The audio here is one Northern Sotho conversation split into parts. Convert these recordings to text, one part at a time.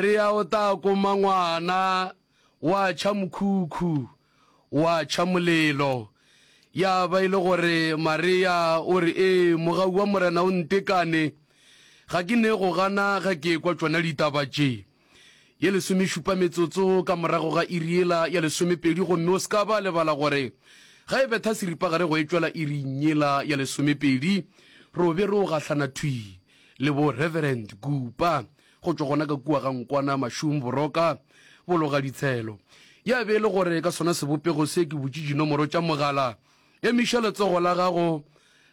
Re ya o ta koma ngwana, wa tšha mokhukhu, wa tšha molelo. Ya ba e le gore Maria o re, Ee, mogau wa Morena o ntekane. Ga ke ne go gana ge ke ekwa tšona ditaba tše. Ye lesomešupa metsotso ka morago ga iri yela ya lesomepedi, gomme o se ka ba lebala gore ge e betha seripagare go etšwela iring yela ya lesomepedi, ro be ro gahlana thwi le bo Reverend Kupa. Go tšwa gona ka kua ga nkwana mašung boroka bolo ga ditshelo. Ya be e le gore ka sona sebopego se ke butše dinomoro tša mogala. Emiša letsogo la gago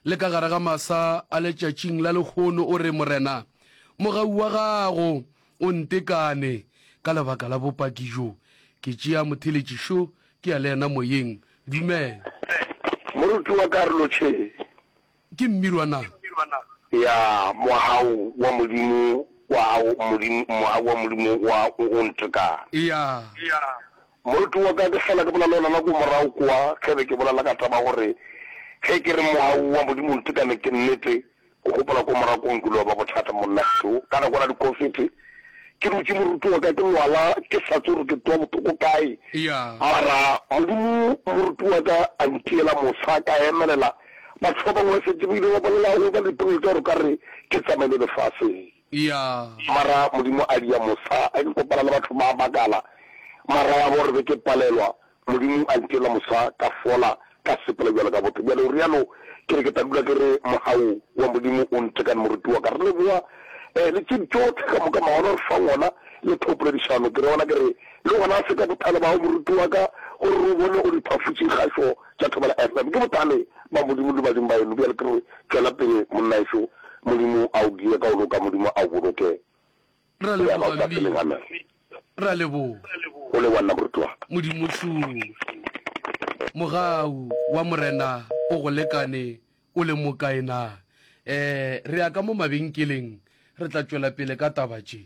le ka gare ga masa a letšatšing la lehono o re, Morena, mogau wa gago o ntekane ka lebaka la bopaki jo. Ke tšea motheletši šo ke ya le yena moyeng. Dumela. Moruti wa karolo tše. Ke mmirwa na? Ya, Moaho wa Modimo wa gago, Modimo, Moaho wa Modimo wa, o, o ntekang. Ya. Moroto wa ka, ke fela ke bolela le wena nako morago kwa, ge be ke bolela ka taba ya gore, ge ke re Moaho wa Modimo o ntekane, ke nnete. O gopola kwa morago kwa Nkulo wa ba Bothata, monna Stu, ka nako yela dikofete, ke dutše moroto wa ka, ke lwala, ke sa tsebe gore ke twa bothoko kae. Ya. Mara Modimo, moroto wa ka, a ntiela mosa, ka emelela. Mahlobong o šetše o ile wa bolela go ba lipolelo tša gore o ka re ke tsamaile lefaseng. Eya. Mara Modimo a dia mosa ge ke kopana le batho ba makala, mara ya gore be ke palelwa, Modimo a ntirela mosa ka fola ka sepela bjalo ka botho. Bjale o realo, ke re ke tla dula ke re mogau wa Modimo o ntekane moruti wa ka. Re leboga eh le tše tšohle ka moka maono a re fang ona le thopoledišano. Ke re ona ke re le gona se ka bothale bao moruti wa ka gore re o bone o re phafutše kgašo. tša thobela Ephraim, ke bothale bja Modimo le badimo ba yeno, bjale ke re, Tšwela pele, monnaešo, Modimo a o die ka go loka, Modimo a o boloke, Re a leboga, Mmina. Re a leboga. O le wa nna, moruti wa ka. Modimo hlung. Mogau wa Morena o go lekane, o le mokae na? Ee, re ya ka mo mabenkeleng, re tla tšwela pele ka taba tše.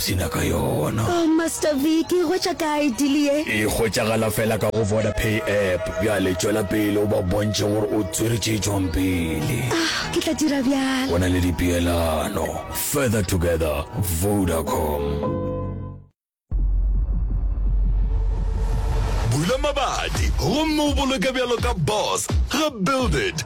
Se nyaka yona. Oh Master Vic e hwetša kae deal ye? E hwetšagala fela ka go Vodapay app. Bjale tšwela pele o ba bontšhe gore o tswere tše tšwang pele. Ah, ke tla dira bjalo. Go na le dipeelano. Further together, Vodacom. Bula mabati gomme o boloke bjalo ka boss ga Build It.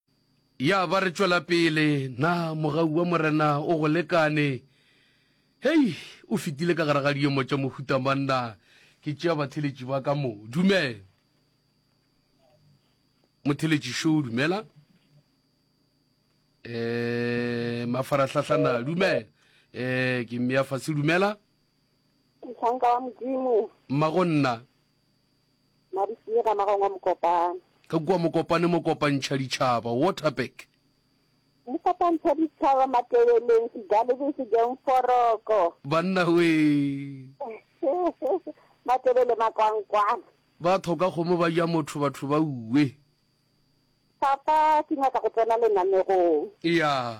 Ya ba re tšwela pele. Na mogau wa Morena o go lekane? Hei, o fetile ka gare ga diemo tša mohuta mang na? Ke tšea batheletši ba ka mo. Dumela. Motheletši Show, dumela. Eh, mafarahlahla na, dumela. Eh, ke mmea fase, dumela. Mohlanka wa Modimo. Mmago nna. Madisinyi ga magong wa Mokopane. Ka kua Mokopane mo kopantšha ditšhaba, Waterberg. Mo kopantšha ditšhaba Matebeleng, Sejalebeng, Sejong, Foroko. Banna wee. Matebele makwankwana. Ba thoka kgomo ba ja motho batho ba uwe. Papa ke nyaka go tsena lenanegong. Eya.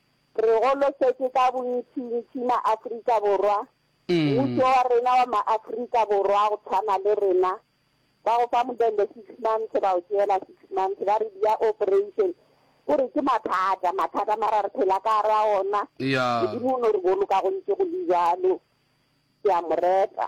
Re golosetše ka bontšintši maAfrika Borwa, mmušo wa rena wa maAfrika Borwa go tshwana le rena, ba go fa modende six months ba go tšeela six months ba re dia operation, ko re ke mathata, mathata mara re phela ka gare ga ona, Modimo o no re boloka go ntše go le bjalo, ke a mo reta.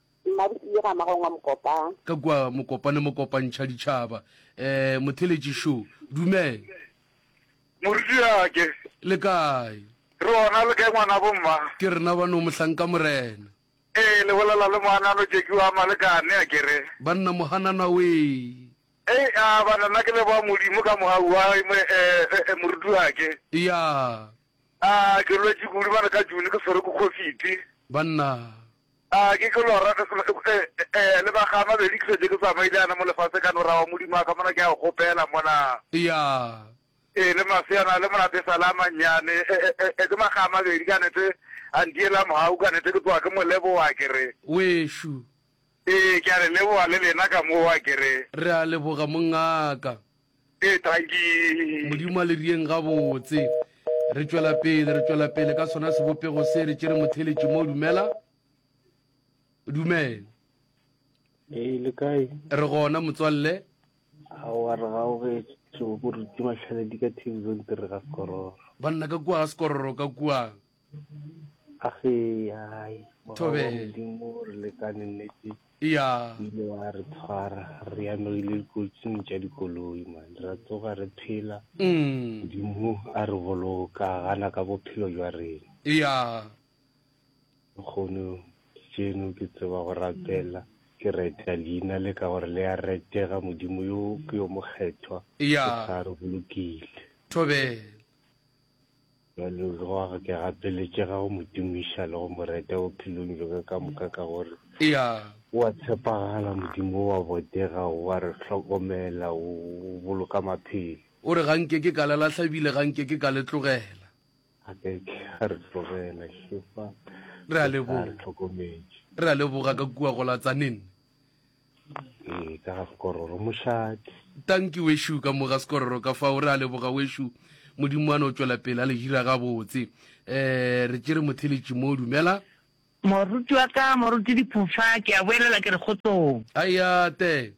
Nna Bosile ga magong wa Mokopane. Ka kua Mokopane mo kopantšha ditšhaba. Eh, Motheletši šo. Dumela. Morutiwake. Le kae? Re ona, le kae ngwanabo mma? Ke rena bano, Mohlanka Morena. Ee, le bolela le Mohanano Jackie wa Malekane, a ke re? Banna Mohanana wee. Ei, a bana, nna ke leboga Modimo ka moga wa, eh, Morutiwake. Eya. A ke lwetše kudu bana ka June, ke swerwe ke khofiti. Banna. A ke tlo lora ge Selo, e, e, e, lebaka a mabedi ke fetše ke tsamaile yana mo lefase ka no ra wa Modimo a ka mona ke a go kgopela mona. Eya. E le mafse yana le monate e sa le a mannyane, e, e, e, e, ke maga a mabedi ka nete a ntiela mohau ka nete ke tloga ke mo leboga ke re. Wešo. E, ke a le leboga le lena ka mowa ke re. Re a leboga mongaka. Ee, Tanki. Modimo a le rieng gabotse. Re tšwela pele, re tšwela pele ka sona sebopego se, re tšere motheletši mo dumela. Dumela. Ee, le kae? Re gona motswalle. Ao a re ga o ge tšo go re tšuma tlhaledi ka TV zone re ga skororo. Banna ka kua ga skororo ka kua. a ge hai modimo re lekane nnete ya ile wa re tshwara re ya no ile dikotsing tša dikoloi man ra tsoga re phela mm. modimo a re boloka gana ka bophelo jwa rena ya kgono tseno ke tseba go rapela ke reta leina le ka gore le ya retega modimo yo ke yo mokgethwa ya re bolokile thobela Bjalo go a ke gapeletše ga go mo tumiša le go mo reta bophelong bjaka ka moka ka gore o a tshepagala Modimo o a botega o a re hlokomela o boloka maphelo. O re ga nke ke ka le lahla ebile ga nke ke ka le tlogela. A ke ke a re tlogela hle fa re a leboga re a leboga ka kua go la tsa nenne. Ee, ka ga sekororo, mošadi. Tanki wešo ka mo ga sekororo ka fao. Re a leboga wešo, Modimo a no tšwela pele a le hira gabotse. Ee, re tšere motheletši mo. Dumela. Moruti wa ka, Moruti Diphofa, ke a boelela ke re kgotsong. Aia, Te.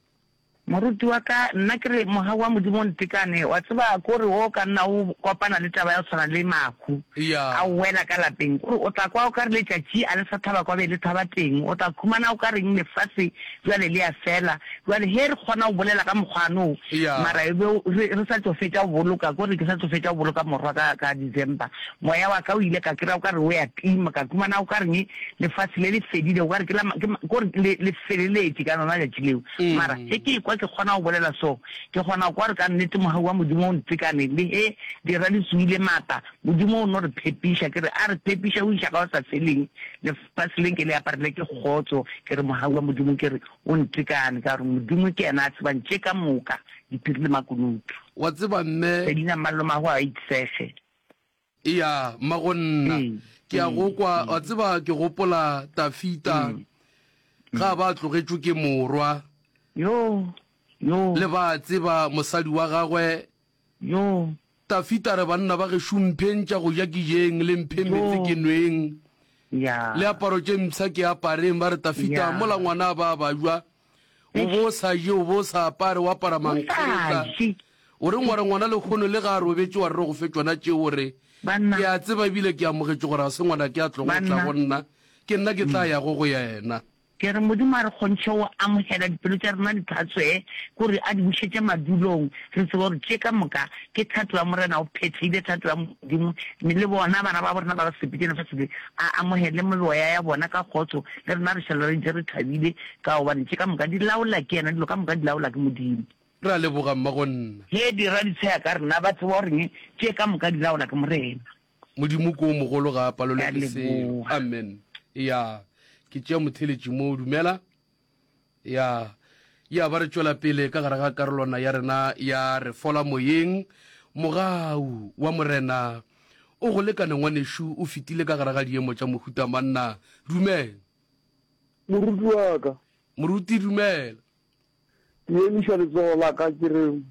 Moruti wa ka, nna ke re, Mogau wa Modimo o ntekane, wa tseba, ko re o ka nna o kopana le taba ya go tshwana le mahu. a o wela ka lapeng, o re o tla kwa o ka re letšatši a le sa thaba kwa be le thaba teng, o tla khumana o ka reng lefase bjale le ya fela. Bjale hee re kgona go bolela ka mokgwano o, mara e be re, re sa tšo fetša go boloka, ko re ke sa tšo fetša go boloka morwa ka, ka December. Moya wa ka o ile ka kry-a o ka re o ya tima, ka khumana o ka reng lefase le le fedile, o ka re ke la, ke, ko re le, le feleletše ka lona letšatši leo. Mara ge ke ekwa ke kgona go bolela so, Ke kgona kwa gore ka nnete Mogau wa Modimo o ntekane, le ge di ra di suile maata, Modimo o no re phepiša. Ke re a re phepiša go iša ka go sa feleng. Lefase le nke le aparelwe ke kgotso, ke re Mogau wa Modimo ke re o ntekane, ka gore Modimo ke yena a tsebang tše ka moka, diphiri le makunutu. Wa tseba, mme. Selina Malomagwe a itsege. Eya, mma go nna. Mm. Ke a go kwa, mm. wa tseba ke gopola Tafita mm. ga ba tlogetšwe ke morwa. Yo, yo. Le ba tseba mosadi wa gagwe. Yo. Tafita re banna ba ge šumphentša go ja kijeng le mphe metse ke nweng. Ya. Le aparo tše mpsha ke apareng ba re Tafita mola ngwana ba ba jwa. O be o sa je, o be o sa apare, o apara mankgotla. O re ngware ngwana lekgono le ga a robetše wa rre go fe tšona tšeo o re, Ke a tseba ebile ke amogetše gore ga se ngwana ke a tlogo go tla go nna, ke nna ke tla yago go yena. Ke re Modimo a re kgontšhe go amogela dipelo tša rena di tlhatsoe kore a di bušetše madulong, re tseba gore tše ka moka ke thato ya Morena, o phethile thato ya Modimo, mme le bona bana babo rena ba ba sepetše lefase le a amogele mebeoya ya bona ka kgotso, le rena re šala re ntše re thabile Ka gobane tše ka moka di laola ke yena, dilo ka moka di laola ke Modimo. Re a leboga, mmagonna. Ge di raditshwea ka rena, ba tseba gore eng? Tše ka moka di laola ke Morena. Modimo ke o mogolo, ga a palelwe ke selo. Amen. Ya. Ke tšea motheletši mo. Dumela. Ya. Ya ba re tšwela pele ka gare ga karolwana ya rena ya Re Fola Moyeng. Mogau wa Morena o go lekane, ngwanešu. O fetile ka gare ga diemo tša mohuta manna. Dumela. Moruti wa ka. Moruti, Dumela. Ke emiša letsogo la ka ke re,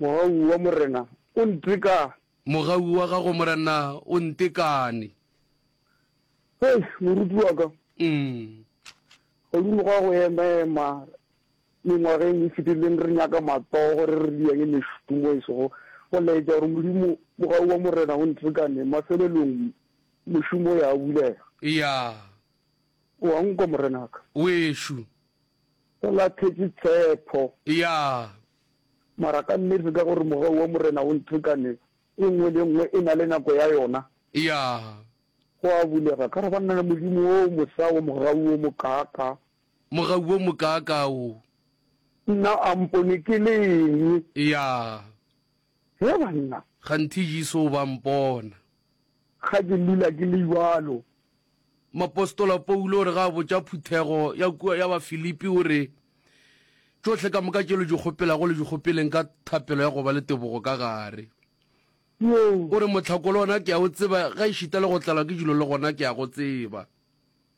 Mogau wa Morena o ntekane. Mogau wa gago Morena o ntekane. Hei, moruti wa ka. Umm. Godimo ga go emaema mengwageng e fetileng re nyaka matsogo re re diyange mešomo e sego go laetša gore Modimo, Mogau wa Morena o ntekane mafelelong. Mošomo o ya bulega. Eya. O a nkwa morenaka. Wešo. Go lathwetše tshepho. Eya. Mara ka nnete ka gore mogau wa Morena o nthekane, e nngwe le e nngwe e na le nako ya yona. Eya. Go a bulega. Ka re ba nna le Modimo o mosa wa mogau o mokaaka. Mogau o mokaaka o. Nna a mpone ke le eng? Eya. He banna. Kganthe Jesu o ba mpona. Ga ke lula ke le bjalo. Moapostola Paulo o re ga a botša phuthego ya kua ya Bafilipi, o re, Tšohle ka moka tše le di kgopelago le di kgopeleng ka thapelo ya go ba le tebogo ka gare. O re, Mohlako le ona ke a o tseba, gaešita le go tlalwa ke dilo le gona ke a go tseba.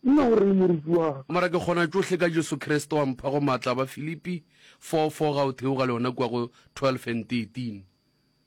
Nna o reng, moruti wa ka? Mara ke kgona tšohle ka Jesu Kriste wa mphago maatla, Bafilipi 4, 4 ga o theoga le yona kua go 12 and 13.